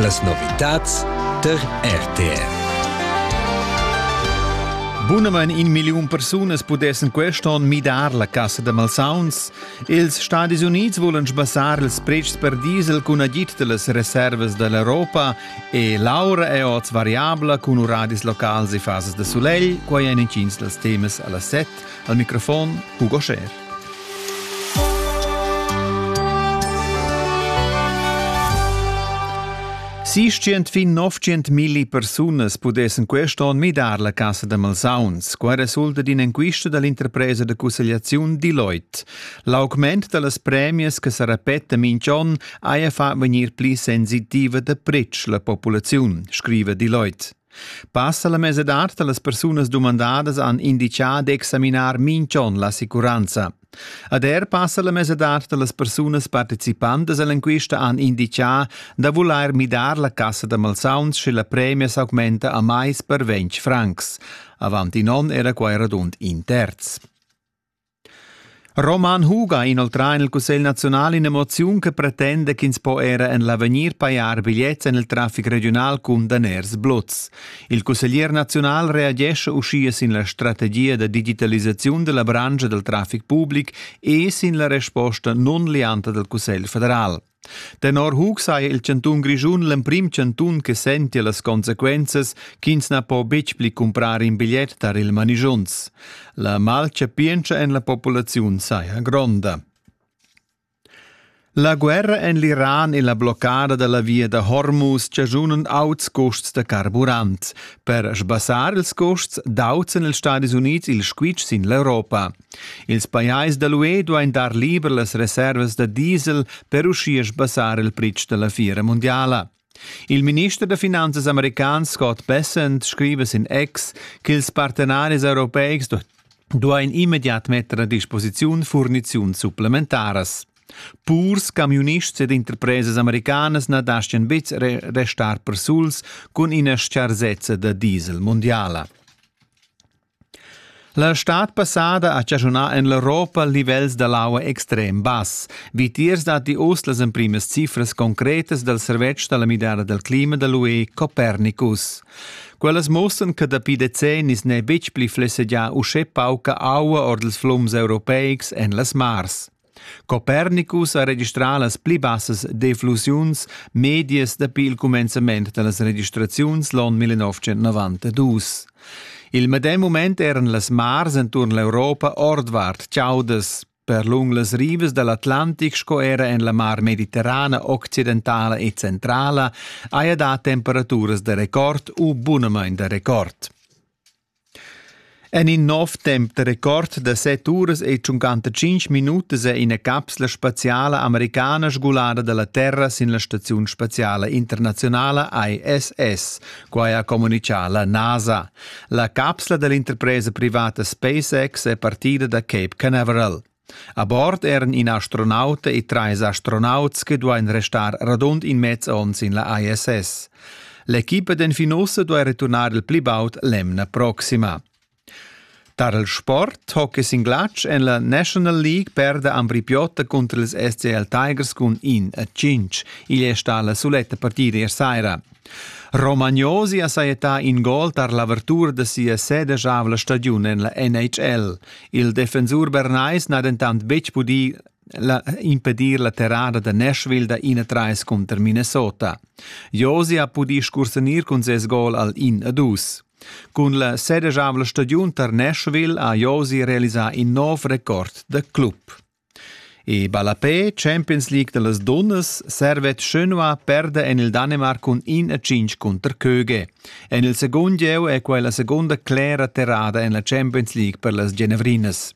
Las novitads tar RTR. Bunamain in milliun persunas pudessen quest onn midar la cassa da malsauns. Ils Stadis Unids volan sbassar ils pretschs per diesel cun agid da las reservas da l'Europa e l'aura è oz variabla cun uradis locals e fasas da sulegl. Quai èn intgins dals temas a la set. Al microfon Hugo Scher. Sistient fin 900 milli persunas pudessen quest onn midar la casa da malsauns. Qua resulta d'inenquista dall'interpresa da cussegliaziun Deloitte. L'augment dallas premias che sa repeta minch'on haja fa vegnir pli sensitiva da pretsch la populaziun, scrive Deloitte. Passa la mesadad da las persunas dumandadas han inditgà d'examinar minch'on l'assicuranza. Ad er passa la mesadad da las persunas participantas a l'enquista han inditgà da vulair midar la cassa da malsauns sche la premia s'augmenta a mais per 20 francs. Avant in onn era quai radund in terz. Roman Huga inoltrà en il Cussegl naziunal ina moziun che pretenda ch'ins po era en l'avegnir pajar bigliets en il traffic regiunal cun daners blots. Il cusseglier naziunal reagesce uschia sin la strategia da digitalisaziun della branca del traffic public e sin la resposta non lianta del Cussegl federal. Tenor Hug saja il chantun Grischun l'emprim chantun che sentia las consequenzas ch'ins na po betg pli cumprar in bigliet tar il manischunz. La malchapientscha en la populaziun saja gronda. La guerra en l'Iran e la bloccada da la via da Hormuz chaschunan auts custs da carburant. Per sbassar ils custs d'auten els Stadis Unids il squitsch sin l'Europa. Ils pajais da l'UE duain dar liber las reservas da diesel per uschia sbassar il pretsch da la fiera mundiala. Il minister da finanzas american Scott Bessent scriva sin X ch'ils partenaris europeics duain immediat metter a disposiziun furniziuns supplementaras. Purs, camiunists ed interpresas americanas na dastgan betg restar persuls cun ina stgarsezza da diesel mundiala. La stad passada ha chaschunà en l'Europa livels da l'aua extrem bass. Vitiers datti uss las emprimas cifras concretas dal servetsch da la midada dal clima da l'UE Copernicus. Quellas muossan che dapi decennis n'è betg pli flessegià uschè pauca aua ord ils flums europeics en las mars. Copernicus ha registrà las pli bassas deflussiuns medias dapi il cumenzament da las registraziuns l'onn 1992. Il medem mument eran las mars enturn l'Europa ordvart chaudas. Per lung las rivas da l'Atlantic sco era en la mar mediterrana occidentala e centrala haja dà temperaturas da record u bunamain da record. En in nov temp da record da set uras ei tschuncanta tschintg minutas è ina capsla spaziala americana sgulada dalla Terra sin la staziun spaziala internazionala ISS. Quai ha communitgà la NASA. La capsla dall'interpresa privata SpaceX è partida da Cape Canaveral. A bord eran in astronauta e trais astronauts che duain restar radund in mez onn sin la ISS. L'equipa d'enfin ussa duai returnar il pli baud l'emna proxima. Tar il sport hockey sin glatsch en la National League perda Ambri Piotta cunter ils SCL Tigers cun in a cinc. Igl è stà la suletta partida ier saira. Romagnosi ha sajettà in gol tar l'avertura da sia sedeschavla stagiun en la NHL. Il defensur bernais n'ha dentant betg pudì la, impedir la terrada da Nashville da 31 cunter Minnesota. Josi ha pudì scursanir cun ses gol al 1-2. Cun la sedeschavla stagiun tar Nashville ha Josi realisà in nov record da club. E ballapè Champions League da las dunnas servet schönua perda en il Danemarc cun 1 a 5 cunter Köge. En il secund gieu è quai la segunda clera terrada en la Champions League per las Genevrinas.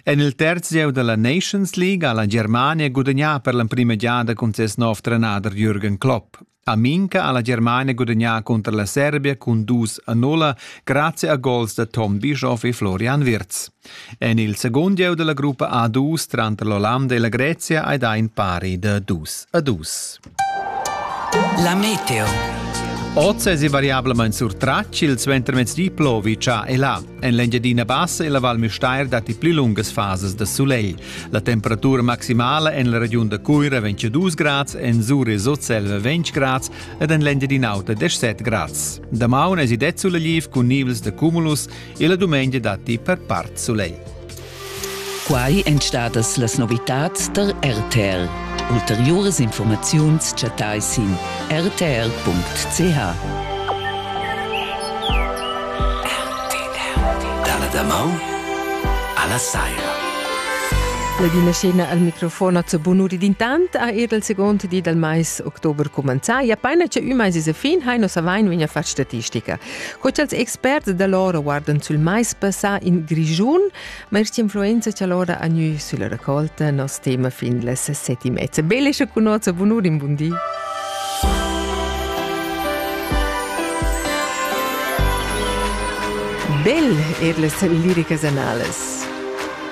En il terz gieu da la Nations League ha la Germania gudagnà per l'emprima giada cun ses nov trenader Jürgen Klopp. Aminca ha la Germania gudagnà cunter la Serbia cun dus a nulla grazia a gols da Tom Bischoff e Florian Wirtz. En il segund gieu della gruppa A2 tranter l'Ollanda e la Grezia hai dà in pari da dus a dus. La meteo. Oz è variablement surtratg il suentermezdi plovi cha e là. En l'Engiadina Bassa e la Val Müstair datti pli lungas fases da sulegl. La temperatura maximala en la regiun da Cuira vegn 2 grads, en Sur e Sutselva 20 grads ed en l'Engiadin'Auta 17 grads. Damaun es det suleliv cun nivels da cumulus e la dumengia datti per part sulegl. Quai èn stadas las novitads tar RTL. Ulteriuras informaziuns chattai sin rtr.ch. Dalla damaun alla saira. La vina scena al microfon a Bunuri d'intant ha er il second di dal mais october cumenzà. Ja paina che ün mais a fin hai nos avain vegna far statistica. Co ch'als experts da l'ora guardan sul mais passà in Grischun, Ma er influenza cha l'ora ha gnü sülla raccolta nos tema fin las set e mezza. Belescha cun hoz e bunur in bun di. Bel er las liricas analas.